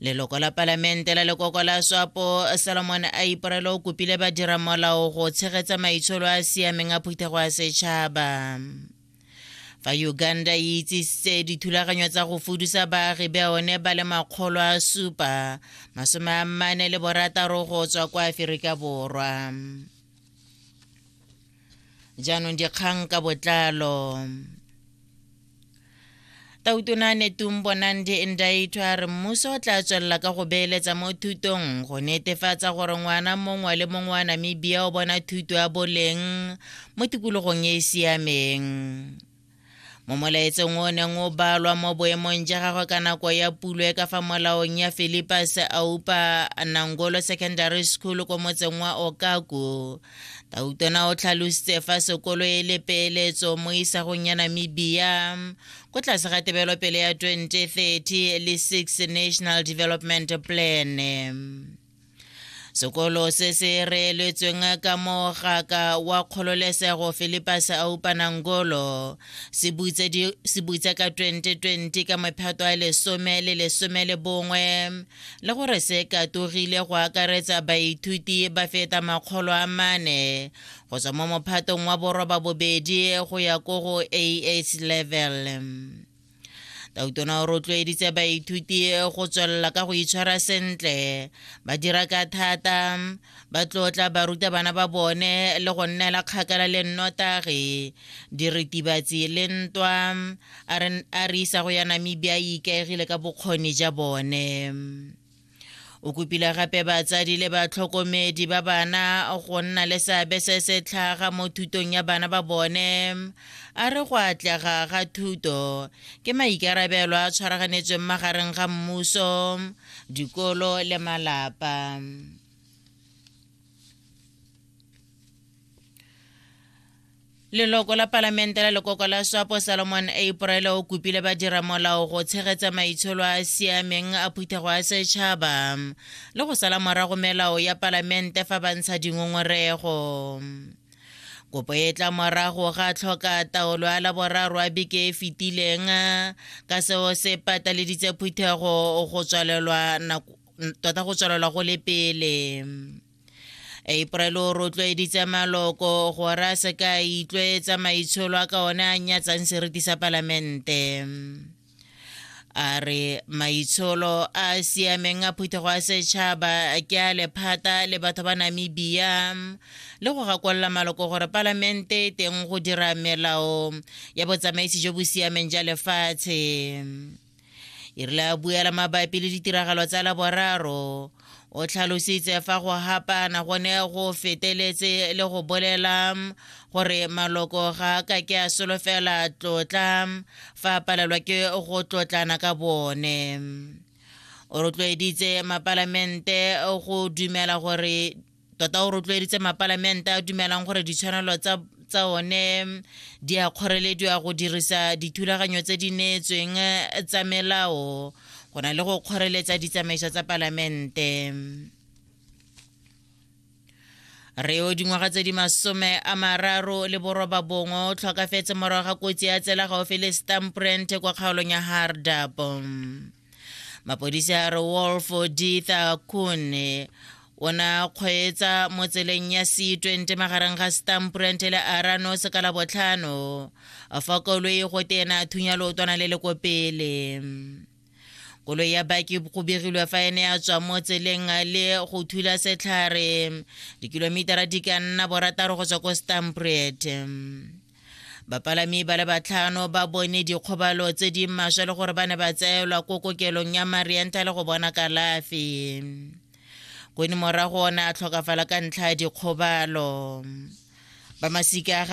leloko la palamente la lekoko la swapo solomon a iporelo o kopile badira molao go tshegetsa maitsholo a siameng a phuthego ya setšhaba fa uganda e itsisitse dithulaganyo tsa go fudusa baagi ba one ba le makgolo a supa masome a mmane le borataro go tswa kwa aferika borwa jaanong dikgang ka botlalo Tautona Netumbo Nandi Ndaitwa a re mmuso o tla tswelela ka go beeletsa mo thutong go netefatsa gore ngwana mongwe le mongwe wa Namibia o bona thuto ya boleng mo tikologong e e siameng. Mo molaetsong o neng o balwa mo boemong ja gagwe ka nako ya pulo e ka fa molaong ya Philippus Aupa Nangolo Secondary School ko motseng wa Okaku, Tautona o tlhalositse fa sekolo e le peeletso mo isagong ya Namibia ko tlase ga tebelopele ya 2030 le 6 National Development Plan. Sekolo se se reeletsweng ka mogaka wa kgololesego Philippus Aupanangolo se butse ka 2020 ka mephato a lesome le lesome le bongwe le gore se katogile go akaretsa baithuti ba feta makgolo a mane go tswa mo mophatong wa boroba bobedi go ya ko go AS level. Tautona o rotloeditse baithuti go tswelela ka go itshwara sentle ba dira ka thata ba tlotla barutabana ba bone le go nnela kgakala le nnotagi diritibatsi le ntwa a re isa go ya namibia e ikaegile ka bokgoni ja bone o kopile gape batsadi le batlhokomedi ba bana go nna le seabe se se tlhaga mo thutong ya bana ba bone a re go atlega ga thuto ke maikarabelo a tshwaraganetsweng magareng ga mmuso dikolo le malapa leloko la palamente la lekoko la swapo salomon april o kopile badira molao go tshegetsa maitsholo a a siameng a phuthego ya setšhaba le go sala morago melao ya palamente fa ba ntsha dingongorego kopo e tla morago ga tlhoka taolo ya laboraro a beke e fetileng ka seo se pataleditse phuthego go tswalelwa nako tota go tswalelwa go le pele april o rotloeditse maloko gore a se ka a itlwaetsa maitsholo a ka one a nyatsang seriti sa palamente a re maitsholo a a siameng a phuthego a setšhaba ke a lephata le batho ba namibia le go gakolola maloko gore palamente e teng go dira melao ya botsamaisi jo bo siameng ja lefatshe e rile a buela mabapi le ditiragalo tsa laboraro o tlhalositse fa go hapana go ne go feteletse le go bolela gore maloko ga a ka ke a solofela tlotla fa a palelwa ke go tlotlana ka bone o rotloeditse mapalamente go dumela gore tota o rotloeditse mapalamente a dumelang gore ditshwanelo tsa tsa one di a kgorelediwa go dirisa dithulaganyo tse di neetsweng eh, tsa melao go na le go kgoreletsa ditsamaiso tsa palamente reo dingwaga tse di masome a mararo le boroba bongwe o tlhokafetse morago ga kotsi ya tsela gaufi le stamprent kwa kgaolong ya hardap mapodisi a re wolf ditha kune ona kgweetsa mo tseleng ya c20 magareng ga stamprent le arano se ka la botlhano fa koloi go tena thunya lootwana le le ko pele koloi ya baki go begilwe fa ene ya tswa mo tseleng le go thula setlhare dikilomitara di ka nna borataro go tswa ko stamprete Bapalami ba le batlhano ba bone dikgobalo tse di maswe le gore ba ne ba tseelwa ko kokelong ya Mariental go bona kalafi. Kone morago o ne a tlhokafala ka ntlha ya dikgobalo. Ba masika ga